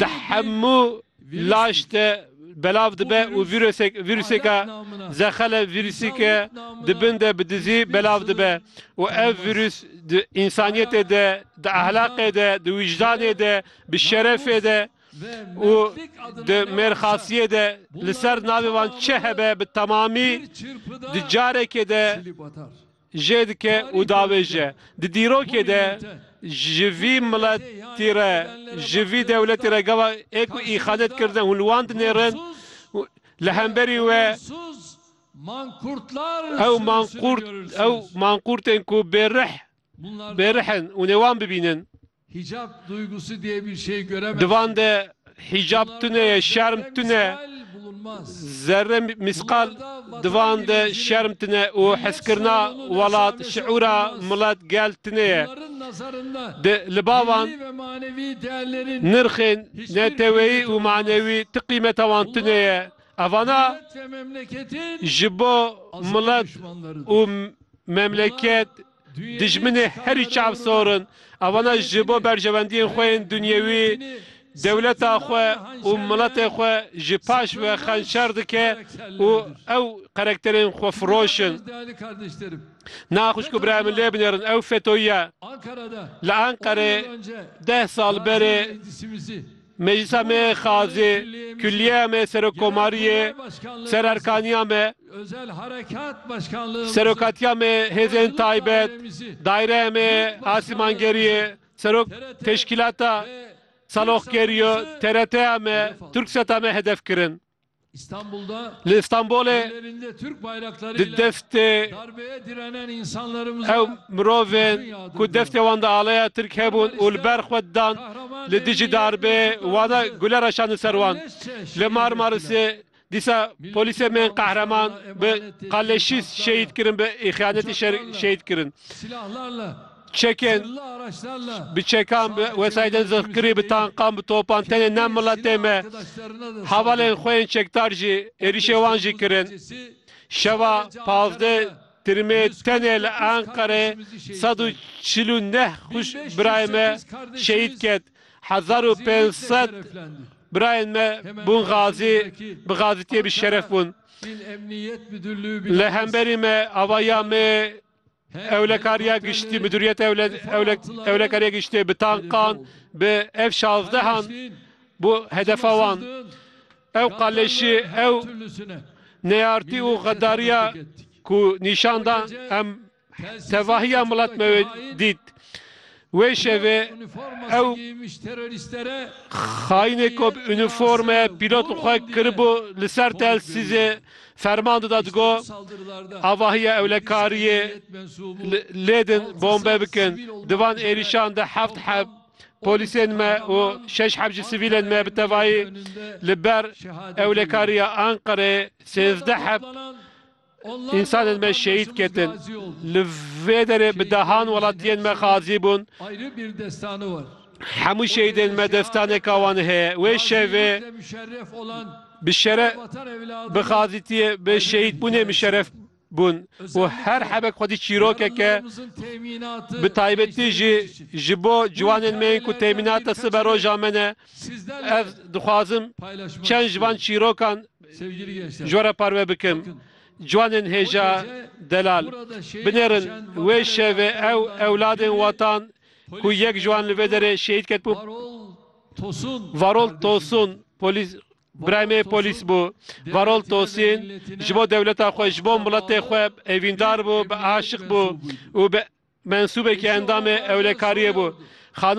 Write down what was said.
Di hemû laş de belav dibe û vîrusêka zexele vîrusîke di bin de bi dizî belav dibe û ev vîrus di însaniyetê de, di ehlaqê de, di wijdanê de, bi şerefê de û di mêrxasiyê de li ser navê wan çi hebe bi temamî di carekê de jê dike û davêje. Di dîrokê de ji vî miletî re, ji vî dewletî re gava ê ku îxanet kirine hûn li wan dinêrin û li hemberî we ew manqurt ew manqurtên ku bêrih bêrih in hûn ê wan bibînin. Di van de hîcab tune ye, şerm tune, zerre mîsqal di van de şerm tune û heskirina welat, şiûra milet, gel tune ye. Di libavan nirxên neteweyî û manewî ti qîmeta wan tune ye. Evana ji bo milet û memleket Dijminê herî çav sor in. Evana ji bo berjewendiyên xwe yên dunyewî dewleta xwe û miletê xwe ji paş ve xençer dike û ew qerekterên xwefiroş in. Na xwişk û birayê min lê binêrin ew FETÖ'yî ye. Li Enqerê deh sal berê. Meclisa me yê Xazê, Kulliyeya me yê Serokkomariyê, Sererkaniya me, Serokatiya me yê Hêzên Taybet, Daireya me yê Asîmangeriyê, Serok Teşkîlata Saloxgeriyo, TRTya me, Turksata me hedef kirin. Li Îstanbulê di deftê ew mirovên ku deftê wan di aleya Tirk hebûn û li ber xwe didan li dijî darbeyê wana gule re şandin ser wan. Li Marmarisê dîsa polîsên bên qehreman bi qaleşîs şehîd kirin bi îxyanetî şer şehîd kirin. Çekên bi çekan, bi wesayîdên zirxkirî, bi tankan, bi topan tenê ne miletê me, hevalên xwe yên çekdar jî êrîşê wan jî kirin. Şeva pazdeh Tirmê tenê li Enqerê sed û çil û neh birayên me şehîd ket, hezar û pênc sed birayên me bûn xazî, bi xazitiyê bi şeref bûn. Li hemberî me ava ya me yê. Ewlekariya Giştî, Midûriyeta Ewlekariya Giştî bi tankan bi F şazdeh an bû hedefa wan. Ew qaleşî, ew neyartî û xedariya ku nîşan da em tevahiya milet me wê dît. Wê şevê ew xayînê ku bi unîforme pîlot li xwe kiribû li ser telsîzê ferman dida digo, Avahiya ewlekariyê lêdin bombe bikin. Di van êrîşan de heft heb polîsên me û şeş heb jî sivîlên me bi tevayî li ber ewlekariya Anqerê sêzdeh heb Însanên me şehîd ketin. Li vê derê bi dehan welatiyên me xazî bûn. Hemû şehîdên me destaneka wan heye. Wê şevê bi şere bi xazîtiyê bi şehîdbûnê muşeref bûn û her hebek xwedî çîrokek e. Bi taybetî jî ji bo ciwanên me yên ku temînata siberoja me ne. Ez dixwazim çend ji van çîrokan Ji we re parve bikim. Ciwanên hêja delal, binêrin wê şevê ew ewladên watan ku yek ji wan li vê derê şehîd ket bû. Varol Tosun, polîs, Birayê me polîs bû. Varol Tosîn ji bo dewleta xwe, ji bo miletê xwe evîndar bû, bi aşiq bû û bi mensûbekî endamê ewlekariyê bû.